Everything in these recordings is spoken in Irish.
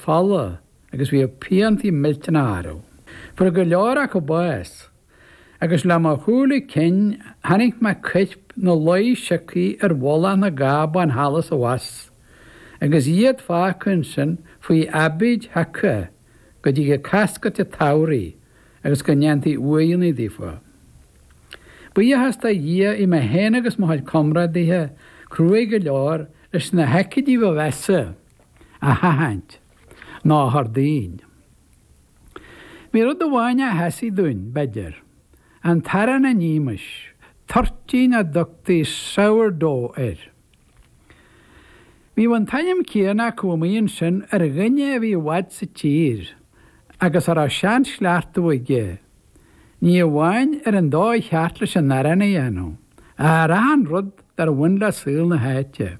fola agus bhíodh piantaí millteanacha orthu. Fuair go leor acu bás, agus le mo shúile cinn chonaic mé coirp ina luí siocthaí ar mhullach na gcábán thall is abhus, agus iad fágtha ansin faoi aibíd sheaca go dtigeadh cascairt an tsamhraidh agus go ndéantaí uaigheanna daofa. Buíochas do Dhia bhí mé féin agus mo chuid comrádaithe cruaidh go leor leis na haicídí ba mheasa, a sheachaint nó a chur dínn. Bhí rud amháin a sheasaigh dúinn, b'fhéidir, an t-arán a nímis, toirtín a dtugtaí sourdough air. Bhíodh an t-ainm céanna acu amuigh ansin ar dhuine a bhí i bhfad sa tír agus a raibh seanchleachtadh aige, ní amháin ar an dóigh cheart leis an arán a dhéanamh, ach ar achan rud dár bhain le saol na háite.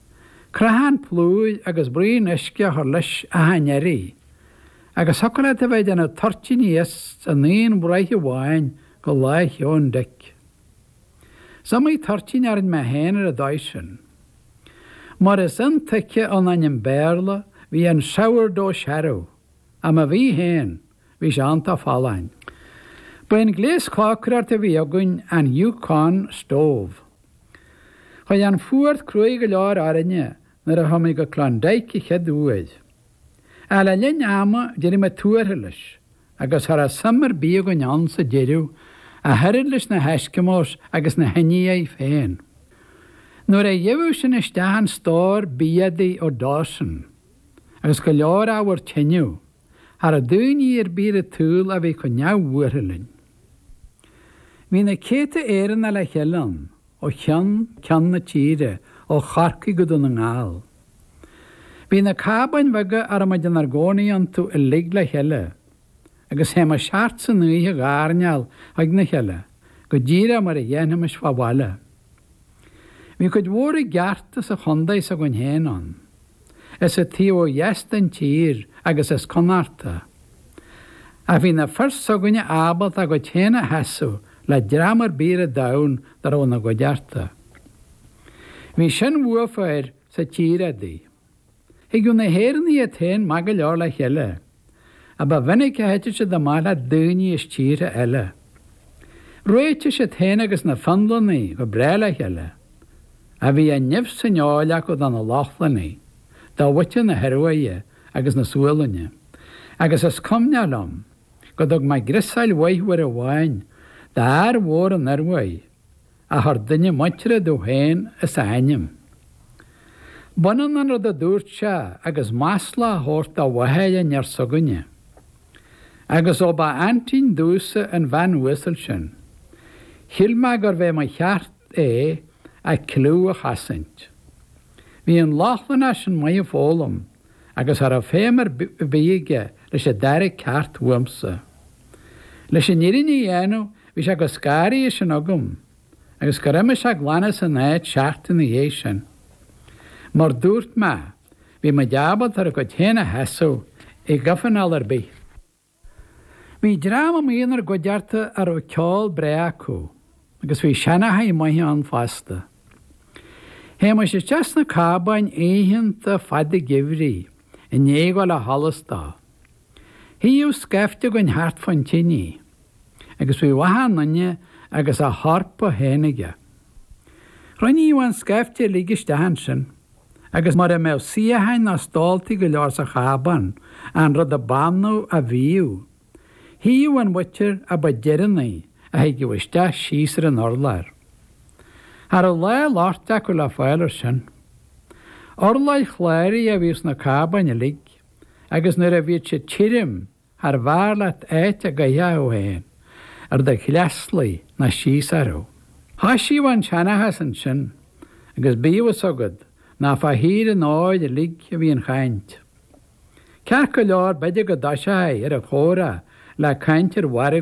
Crothán plúir agus braon uisce a chur leis achan iarraidh, agus thiocfadh leat a bheith ag déanamh toirtíní as an aon bhraich amháin go Lá Sheoin Dic. Is iomaí toirtín a rinne mé féin ar an dóigh sin. Mar is intuigthe ón ainm Béarla, bhí an 'sourdough' searbh, ach má bhí féin, Bhí sé iontach folláin. Ba é an gléas cócaireachta a bhí againn an Yukon Stove. Chuaigh an fuacht cruaidh go leor orainne nuair a chuaigh muid go Klondike an chéad uair. Ach le linn ama d'éirigh muid tuartha leis agus cha raibh suim ar bith againn ann sa deireadh ach oiread leis na hEskimos agus na hIndiaigh féin. Nuair a gheibheadh sinn isteach an stór biataí ó Dawson agus go leor ábhar tineadh, cha raibh daoine ar bith ar an tsaol a bhí chomh neamhbhuartha linn. Bhí na céadta Éireannach le chéile ann, ó cheann ceann na tíre, ó Chorcaigh go Dún na nGall. Bhí na cábáin bheaga a raibh muid inár gcónaí iontu uilig le chéile, agus théimis thart san oíche a dh'airneál chuig na chéile, go díreach mar a dhéanfaimis fá bhaile. Bhí cuid mhór i gceart as an chondae s'againn féin ann, as an taobh ó dheas den tír agus as Connachta. Ach bhí na fir s'againne ábalta a gcuid féin a sheasamh le dream ar bith ar an domhan dá raibh ina gcuideachta. Bhí sin uafa air sa tír udaí. Thigeadh na hÉireannaigh iad féin maith go leor le chéile, ach ba mhinic a thiteadh siad amach le daoine as tíortha eile. Réitigh siad féin agus na Fionlannaigh go breá le chéile, ach bhí an nimh san fheoil acu do na Lochlannaigh, do mhuintir na hIoruaidhe agus na Sualainne, agus is cuimhneach liom go dtug mé griosáil mhaith uair amháin d'fhear mhór ón Ioruaidh, A chur duine muinteartha domh féin as a ainm. B'ionann an rud a dúirt sé agus masla a thabhairt do mháthair an fhear s'againne. Agus ó ba aintín domhsa an bhean uasal sin, shíl mé gurbh é mo cheart é a cliú a chosaint. Bhí an Lochlannach sin maith ag foghlaim. agus cha raibh feidhm ar bith aige leis an dara ceacht uaimse. Leis an fhírinne a dhéanamh bhí sé chomh scanraithe sin agam agus gur imigh sé glan as an áit seachtain ina dhiaidh sin. Mar dúirt mé, bhí muid ábalta ár gcuid féin a sheasamh i gcomhthionól ar bith. Bhí dream amuigh inár gcuideachta a raibh ceol breá acu agus bhí seanchaithe maithe ann fosta. Théimis isteach sna cábáin oícheanta fada geimhridh i ndiaidh dhul ó sholas dó. Shuíodh scaifte againn thart fán tinidh agus bhíodh achan duine agus a hEorpa féin aige. Chruinníodh an scaifte uilig isteach ansin agus mura mbeadh suíocháin ná stóltaí go leor sa chábán, an rud ab annamh a bhíodh. Shuíodh an mhuintir a ba deireanaí a thigeadh isteach síos ar an urlár. Cha raibh lá loicht acu le fáil air sin. Urláir chláraí a bhíodh sna cábáin uilig agus nuair a bhíodh siad tirim, Charbh fhearr leat áit a gcaithfeá thú féin ar do shleasluí ná síos orthu. Thosaíodh an seanchas ansin, agus bíodh a fhios agat nach fá thír an óir uilig a bhíodh an chaint. Ceart go leor b'fhéidir go dtosófaí ar an chomhrá le caint ar mhargadh